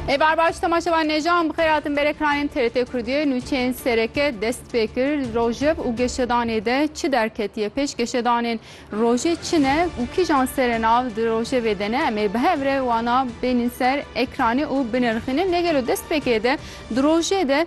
Ê barbaş temaşevan nêjan bixêr hatin berê kranên TRT Kurdiyê nûçeyên sereke dest pê kir li rojev û geşedanê de çi derketiye pêş geşedanên rojê çi ne û kîjan serê nav di rojevê de ne em ê bi hev re wana bênîn ser ekranê û binirxînin lê gelo dest pêkê de di rojê de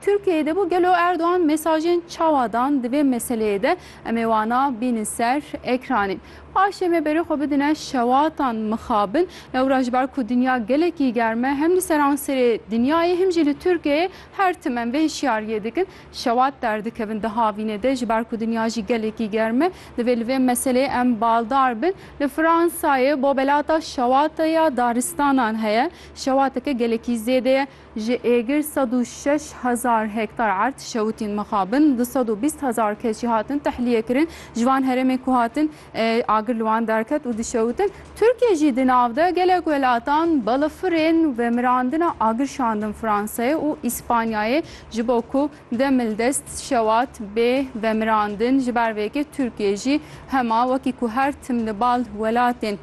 Tirkiyeyê de bû gelo Erdogan mesajên çawa dan di vê meseleyê de em ê wana bînin ser ekranê. Paşê me berê xwe bidine şewatan mixabin lewra ji ber ku dinya gelekî germ e hem li seranserê dinyayê him jî li Tirkiyeyê her tim em vê hişyariyê dikin şewat derdikevin di havînê de ji ber ku dinya jî gelekî germ e divê li vê meseleyê em baldar bin. Li Fransayê bobelata şewata ya daristanan heye. Şewateke gelekî zêde ye. Ji êgir sed û şeş hezar hektar erd şewitîn mixabin, du sed û bîst hezar kes jî hatin tehlîyekirin. Ji van herêmên ku hatin agir li wan derket û dişewitin. Tirkiye jî di nav de gelek welatan balafirên vemirandina agir şandin Fransayê û Îspanyayê ji bo ku demil dest şewat bê vemirandin. Ji ber vê yekê Tirkiye jî hema wekî ku her tim li bal welatên.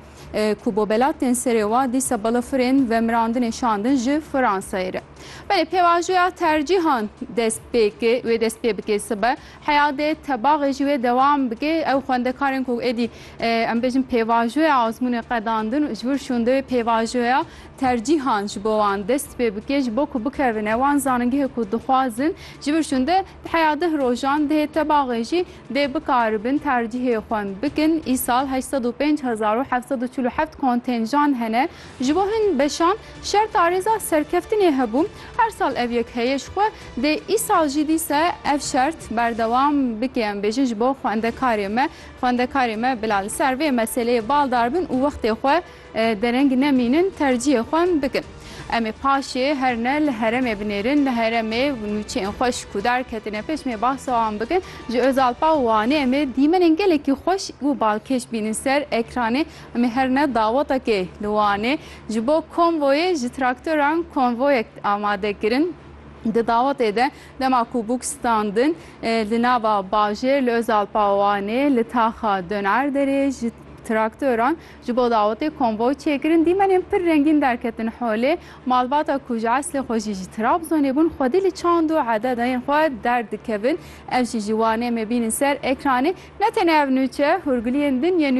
ku bo belatên serê wa dîsa balafirên vemirandinê şandin ji Fransayê re. Belê pêvajoya tercîhan dest pê ki wê dest pê bike sibe heya dê tebaxê jî wê dewam bike ew xwendekarên ku êdî em bêjin pêvajoya azmûnê qedandin ji wir şûn divê pêvajoya tercîhan ji bo wan dest pê bike ji bo ku bikevine wan zanîngehê ku dixwazin ji vir şûn de Heya deh rojan dihê tebaxê jî dê bikaribin tercîhê xwe bikin. Îsal heşt sed û pênc hezar û heft sed û çil û heft kontênjan hene. Ji bo hin beşan şerta rêza serkeftinê hebû. Her sal ev yek heye ji xwe dê îsal jî dîse ev şert berdewam bike. Em bêjin ji bo xwendekarê me. Xwendekarê me bila li ser vê meseleyê baldar bin û wextê xwe. Dereng nemînin tercîyê xwe bikin. Em ê paşê her ne li heremê binêrin, li heremê nûçeyên xwe ji kûdar ketine pêş. Em ê behsa wan bikin. Ji Ozalpa û Wanê em ê dîmenên gelekî xweş û balkêş bînin ser ekranê. Em ê her ne dawetekê li Wanê ji bo konvoyê ji traktoran konvoyek amade kirin. Di dawetê de dema ku bûk standin li nava bajêr li Ozalpa û Wanê li taxa Donerderê ji traktoran Ji bo dawetê konvoy çêkirin, dîmenên pir rengîn derketin holê. Malbata ku ji eslê xwe jî ji Trabzonê bûn, xwedî li çand û ededeyên xwe derdikevin. Ev jî ji Wanê me bînin ser ekranê. Ne tenê ev nûçe, hûrgiliyên din yên.